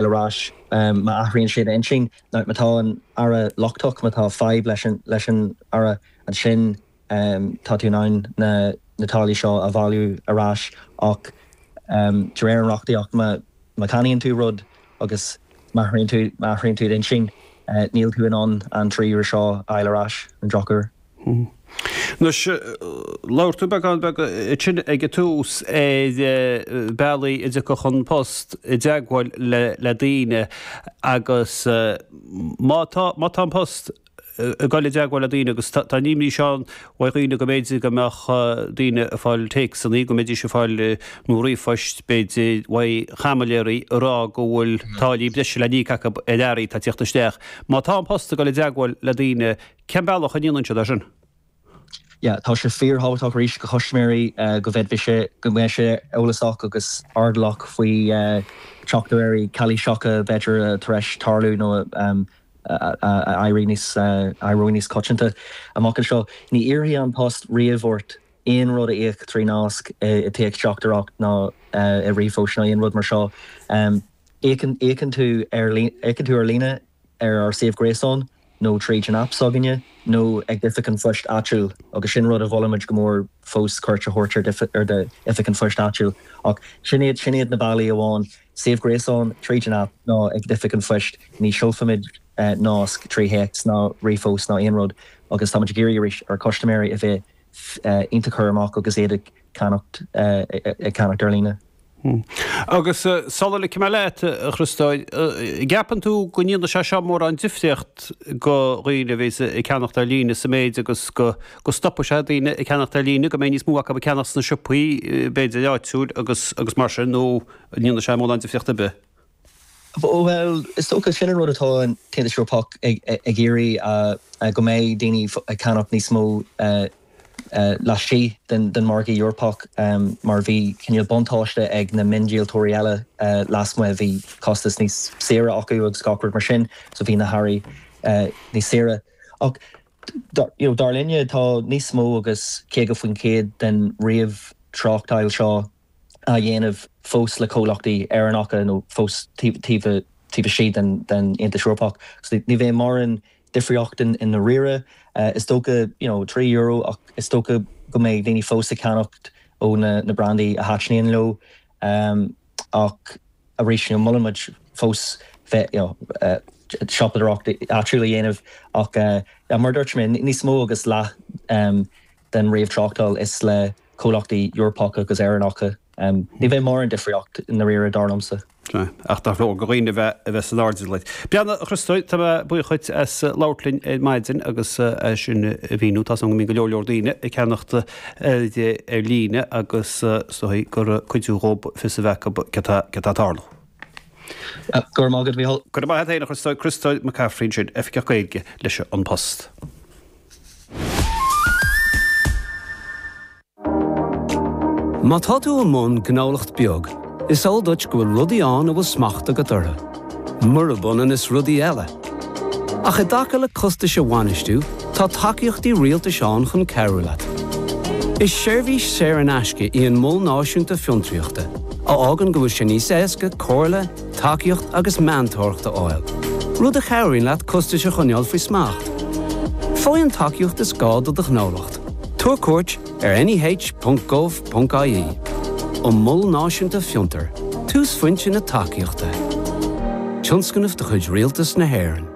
ar ais. Má athraíonn siad a n-intinn, má tá an earra lochtach, má tá fadhb leis an earra, ansin tá tú in ann na táillí seo a bhailiú ar ais. Ach de réir an reachtaíocht, má cheannaíonn tú rud agus má athraíonn tú d'intinn, níl tú in ann an trí euro seo a fháil ar ais, ar an drochuair. Anois, labhair tú beagán beag ansin ag an tús ar bhealaí a dtiocfadh An Post i dteagmháil le daoine agus má tá, má tá An Post ag dul i dteagmháil le daoine agus tá an imní seo ann ó dhaoine go mb'fhéidir go mbeadh daoine ag fáil téacsanna, go mbeidís ag fáil, nó ríomhphoist b'fhéidir, uaidh chaimiléirí ag rá go bhfuil táillí breise le n-íoc acu ar earraí atá ag teacht isteach. Má tá An Post ag dul i dteagmháil le daoine, Cén bealach a ndéileálann sibh leis sin? Yeah, tá sé fíorthábhachtach arís do chustaiméirí go mbeidís, go mbeidís eolasach agus airdeallach faoi teachtaireachtaí calaoiseacha b'fhéidir tar eis tarlú nó ag éirí níos coitianta amach anseo. Ní iarrfaidh An Post riamh ort aon rud a íoc trí nasc i téacsteachtaireacht ná i ríomhphost ná aon rud mar seo. Íocann tú ar líne ar ár suíomh gréasáin. nó tríd an aip s'againne, nó ag d'oifig an phoist áitiúil, agus sin rud a mholaimid go mór fós, cuairt a thabhairt ar d'oifig an phoist áitiúil. Ach sin iad, sin iad na bealaí amháin, suíomh gréasáin, tríd an aip, nó ag d'oifig an phoist, ní sheolfaimid nasc trí théacs ná ríomhphost ná aon rud, agus táimid ag iarraidh arís ar chustaiméirí a bheith. iontach cúramach agus iad ag ceannacht ar líne. Agus sula ligfidh mé leat, a Chriostóir, an gceapann tú go ndéanfaidh sé seo mórán difríocht go dhaoine a bhíos ag ceannacht ar líne sa méid agus go stopfaidh sé daoine ag ceannacht ar líne, go mbeidh níos mó acu ag ceannacht sna siopaí, b'fhéidir áitiúil agus mar sin, nó an ndéanfaidh sé mórán difríocht ar bith? Bhuel, is dócha, sin an rud atá an tAontas Eorpach ag iarraidh, go mbeidh daoine ag ceannacht níos mó laistigh den Mhargadh Eorpach mar bhí cineál buntáiste ag na miondíoltóirí eile lasmuigh, bhí costas níos saoire acu agus gach rud mar sin, so bhí na hearraí níos saoire. Ach dar linne, tá níos mó agus 50% den ríomh-tráchtáil seo, á dhéanamh fós le comhlachtaí Éireannacha nó fós taobh istigh den Aontas Eorpach. Ní bheidh mórán difríocht i ndáiríre, is dócha, you know, trí euro ach is dócha go mbeidh daoine fós ag ceannacht ó na brandaí a thaitníonn leo. Ach arís, you know, molann muid fós bheith, you know, siopadóireacht áitiúil a dhéanamh ach mar a dúirt mé, níos mó agus leath den réamhthráchtáil is le comhlachtaí Eorpacha agus Éireannacha. Ní bheidh mórán difríocht i ndáiríre, dar liomsa. Ach ar ndóigh do dhaoine a bheith, a bheith san airdeall. Bhuel a Chriostail, tá mé buíoch dhuit as labhairt linn ar maidin agus é sin a mhíniú. Tá a fhios againn go mbíonn go leor leor daoine ag ceannacht earraidí ar líne agus is dóigh gur cuidiú dhóib fios a bheith acu cad tá ag tarlú. Go raibh maith agat, Mhícheál. Go raibh maith a't fhéin, a Chriostail. Criostal McCaffrey ansin, Oifigeach Gaeilge leis An Post. Má tá tú i mbun gnólacht beag, is eol duit go bhfuil rudaí ann a bhfuil smacht agat orthu, murab ionann is rudaí eile. Ach i dtaca le costais a bhainistiú, tá tacaíochtaí rialtais ann chun cabhrú leat. Is seirbhís saor in aisce í an Mol Náisiúnta Fiontraíochta, a fhágann go bhfuil sé níos éasca comhairle, tacaíocht agus meantóireacht a fháil, rud a chabhraíonn leat costais a choinneáil faoi smacht. Faigh an tacaíocht is gá do do ghnólacht, tabhair cuairt ar neh.gov.ie an Mol Náisiúnta Fiontar, túsphointe na tacaíochta. Tionscnamh de chuid Rialtas na hÉireann.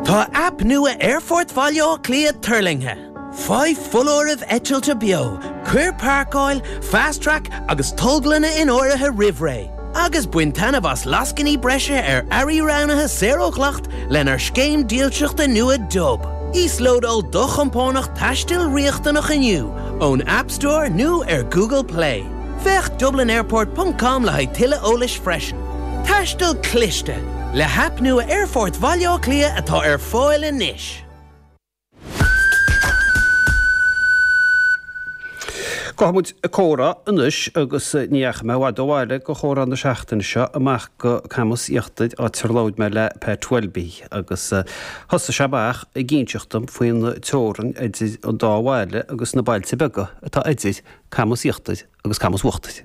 Tá aip nua Aerfort Bhaile Átha Cliath tuirlingthe. Faigh foláirimh eitilte beo, cuir Páirceáil, Fast Track agus Tolglanna in áirithe roimh ré, agus bain taitneamh as lascainí breise ar earraí roghnaithe saor ó dhleacht lenár scéim dílseachta nua Dub. Íoslódáil do chompánach taistil riachtanach inniu ón App Store nó ar Google Play. Féach dublinairport ponc com le haghaidh tuilleadh eolais freisin. Taisteal cliste, le haip nua Aerfort Bhaile Átha Cliath atá ar fáil anois. Gabhfaidh muid ag comhrá anois agus ní dheachaigh mé i bhfad ó bhaile do chomhrá na seachtaine seo, amach go Camas Íochtair áit ar labhair mé le Pat Welby agus thosaigh sé amach ag inseacht dom faoin teorainn idir an dá bhaile agus na bailte beaga atá idir Camas Íochtair agus Camas Uachtair.